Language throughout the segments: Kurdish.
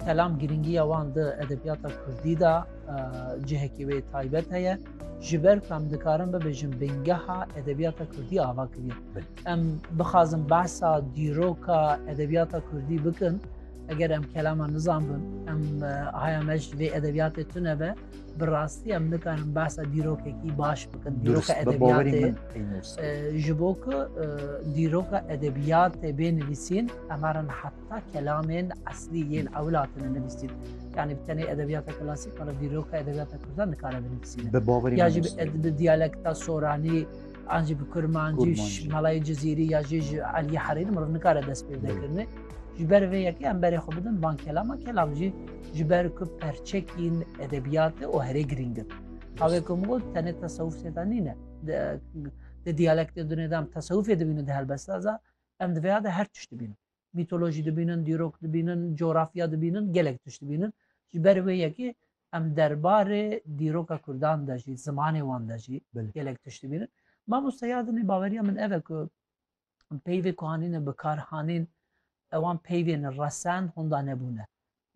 Kelam girîngiya wan di edebiyata Kurdî de cihekî wê taybet heye. Ji ber ku em dikarin bibêjin bêngeha edebiyata Kurdî ava kiriye. Em bixwazin behsa dîroka edebiyata Kurdî bikin, eger em kelama nizanbin, em haya me ji vê edebiyatê tune be. bi rastî em nikarin behsa dîrokekî baş bikin dîroka edebiyatê ji bo ku dîroka edebiyatê bê nivîsîn em herin heta kelamên eslî yên ewlatine nivîsîn yani bi tenê edebiyata klasîk qala dîroka edebiyata kurdan nikare binivîsîn ya jî bi diyalekta soranî ancî bi kurmancî malayê cizîrî ya jî ji aliyê herîr miriv nikare dest pê dekirine ji ber vê yekê em berê xwe bidin ban kelama kelam jî Ji ber ku perçekîn edebiyatê û herê girîng in. Havê ku min got tenê tesewuf sêda nîne. Di diyalektê dunê de em tesewufê dibînin di helbesta za em di vêya de her tişt dibînin. Mîtolojî dibînin, dîrok dibînin, coğrafya dibînin, gelek tişt dibînin. Ji ber wê yekê em derbarê dîroka Kurdan de jî, zimanê wan de jî gelek tişt dibînin. Mamoste ya dinê baweriya min ev e ku peyvê ku hanîne bikar hanîn ewan peyvên resen honda nebûne.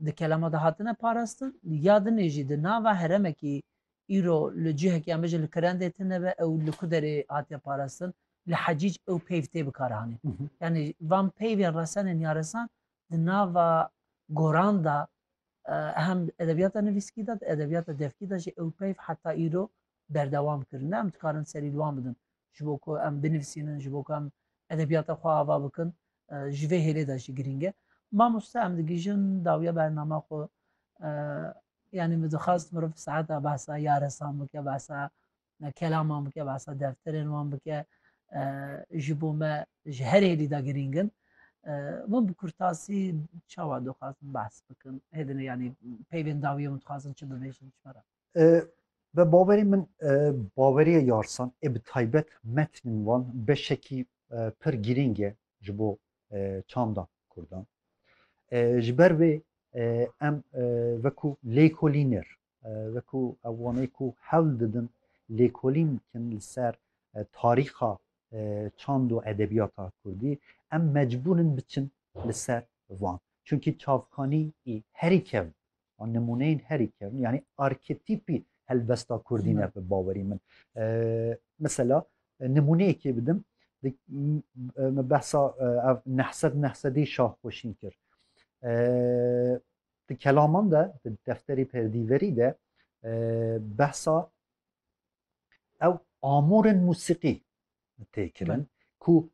Di kelama de hatine parastin ya dinê jî di nava heremekî îro li cihekî em bijin li kirendê tine be ew li ku derê hatiye parastin li hecîc ew peyv tê bikar hanîn. Yanî van peyvên resenên ya resan di nava goran da hem edebiyata nivîskî de di edebiyata devkî de jî ew peyv heta îro berdewam kirin. Em dikarin serî li wan bidin ji bo ku em binivîsînin, ji bo ku em edebiyata xwe ava bikin ji vê hêlê de jî girîng e. Mamoste em digihîjin dawiya bernama xwe yanî min dixwast mirov saeta behsa yaresan bike, behsa kelaman bike, behsa defterên wan bike ji bo me ji her hêlî de girîng in. Min bi kurtasî çawa dixwazin behs bikin hêdine yanî peyvên dawiya min dixwazin çi bibêjin ji me re. Bi bawerî min baweriya yarsan ê bi taybet metnên wan beşekî pir girîng e ji bo çanda Kurdan. Ji ber vê em wekû lêkolîner wekû ew wanê ku hewl didin lêkolîn bikin li ser tarîxa çand û edebiyata Kurdî em mecbûr in biçin li ser wan. Çunkî çavkanî ê herî kev an nimûneyên herî kevn yanî arketîpî helbesta kurdî ne bi bawerî min mesela nimûneyekê bidim me behsa ev nehsed nehsedî şahxweşîn kir di kelaman de di defterî perdîverî de behsa ew amûrin musîqî tê kirin ku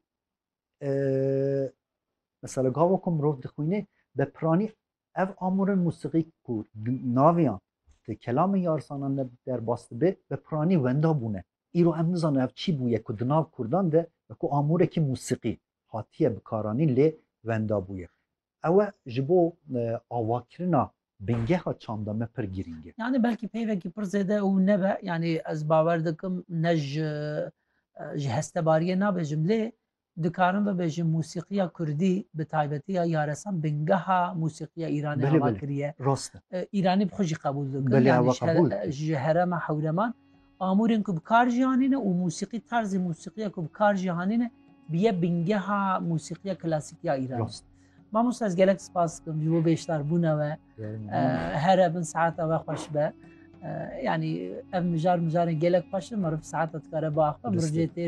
mesela gava ku mirov dixwînê be piranî ev amûrên musîqî ku naviyan di kelamên yarsanan de derbas dibe bi piranî wenda bûne. Îro em nizanin ev çi bûye ku di nav Kurdan de wekû amûrekî musîqî hatiye bikaranîn lê wenda bûye. Ew e ji bo avakirina bingeha çanda me pir girîng e. Yanî belkî peyvekî pir zêde û nebe yanî ez bawer dikim ne ji ji hestebariyê nabêjim lê Dikarim bibêjim musîqiya kurdî bi taybetî ya yaresan bingeha musîqiya Îranê ava kiriye. Îranî bi xwe jî qebûl dikin yanî ji herema hewreman amûrên ku bi kar jî anîne û musîqî tarzê musîqiya ku bi kar jî anîne bûye bingeha musîqiya klasîkî ya Îranê. Mamosta ez gelek spas dikim ji bo bêşdarbûna we here bin saeta we xweş be. Yani ev mijar mijarên gelek xweş in meriv saeta dikare biaxive.